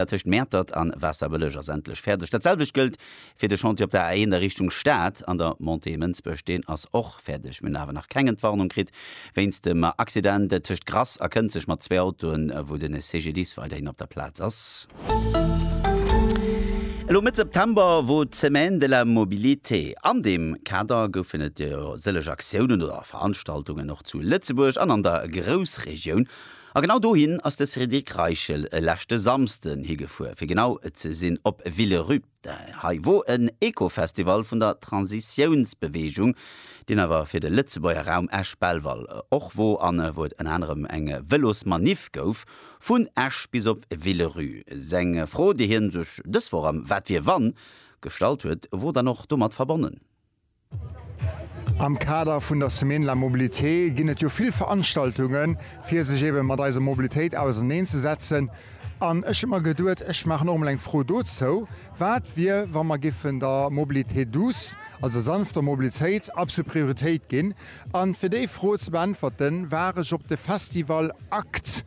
dat tëscht Mäertert a Waasserbëlleg ass endlech fäerdeg. Dat selwecht gëllt fir de Chantier op der A1 a Richtung Stad an der Montée Mënsbech, deen ass och fäerdeg. Mir hunn awer nach keng Entwarnung kritt wéinst dem Accident tëscht Grass a Kënzeg mat zwee Autoen, wou de CGDIS weiderhin op der Plaz ass. Elo Mëtt September wor d'Semaine de la Mobilité. An deem Kader goufen et jo sëllech Aktiounen oder Veranstaltungen och zu Lëtzebuerg an an der Groussregioun. A genau dohin ass de Cédric Reichel e leschte Samsden higefuer, fir genau ze sinn op Villerupt. Hei wor en Ecofestival vun der Transitiounsbeweegung, deen awer fir de Lëtzebuerger Raum Esch-Belval och wor an wou et ënner anerem eng Vëlosmaniff gouf vun Esch bis op Villerü. Seng Fro, déi hien sech dës Woch am Wat wier wann gestallt huet, wor dann och domat verbonnen. Am Kader vun der Semaine de la Mobilité ginn et jo vill Veranstaltungen, fir sech eebe mat eiser Mobilitéit auserneen ze setzen. An ech hunn mer geduet, ech maachen och emol eng Fro dozou, Wat wier, wa mer géifen der Mobilité douce, also sanfter Mobilitéit, absolut Prioritéit ginn? An fir déi Fro ze beäntwerten, war ech op de Festival akt.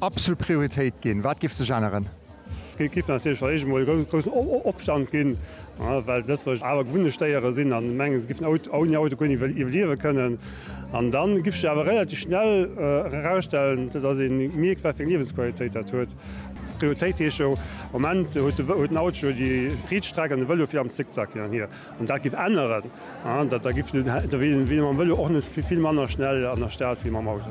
Absolut Prioritéit ginn. Wat giff sech änneren? Et giff natierlech fir d'éischt emol e groussen Opstand ginn, well d'Lëtzebuerger awer gewunnecht Déiere sinn an mengen, se giffen ouni Auto guer net iwwerliewe kënnen. An da giff sech awer relativ schnell erausstellen, dass ee mierkt, wat fir eng Liewensqualitéit dat huet. Prioritéit heescht jo, am Moment huet den Auto jo déi Rietstreck an de Vëlo vill am Zickzack hin an hier. Wann dat giff änneren, da wier ee mam Vëlo och net vill manner schnell an der Stad wéi mam Auto.